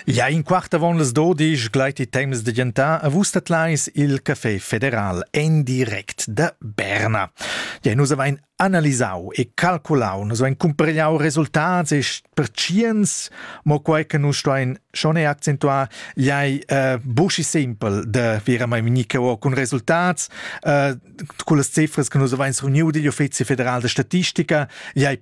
Ja in quart avon las dodisch gleit il temps da gentar a vus dat leis il Café Federal en direct da Berna. Ja nus avain analisau e calculau, nus avain cumpariau resultats e pertschiens, mo quai che nus stuein schon e accentuar, jai uh, buschi simpel de vera mai minicao cun resultats, uh, con las cifras che nus avain reuniu digl Uffizi federal de statistica, jai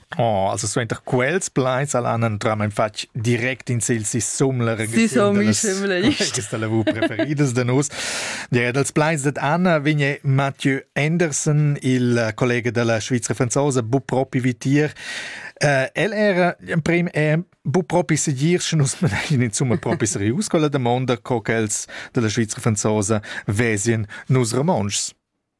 Oh, also suenter quels plaids al han entram in fatg direct in sil sisumler questa lavur preferidas da nus. Dire dals plaids dat Anna vigne Mathieu Anderson, il collega della Svizzera franzosa, bu propi vitier. Uh, el era in prim è bu propi segir sche nus managin insomma propi serius con la domanda co quels della Svizzera franzosa vesien nus romontschs.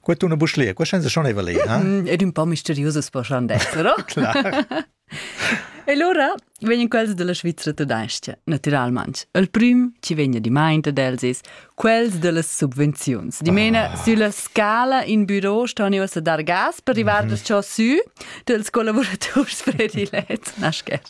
Qua tu na bus lia, qua senza schon eva lei, ha? Ed un po misteriusas poschan d'essere. Clar. E allora vegnan quels della Svizra tedesca, naturalmente. Il prim ci vegna di maint ad els is quels dellas subvenziuns. Dimena ah. sulla scala in bureau ston io a dar gas per arrivar mm -hmm. da ciò su dels collaborators predilet, naschet.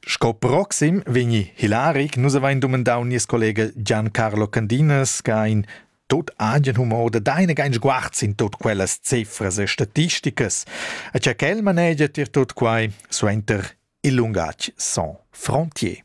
Sco proxim vegni Hilaric. Nus avain dumandau nies collega Giancarlo Candinas che ha in tot agen humor da deine kein Sguarz in tot quellas cifras e statisticas, e cha quel manegia tier tot quai suenter il lungatg sans frontier.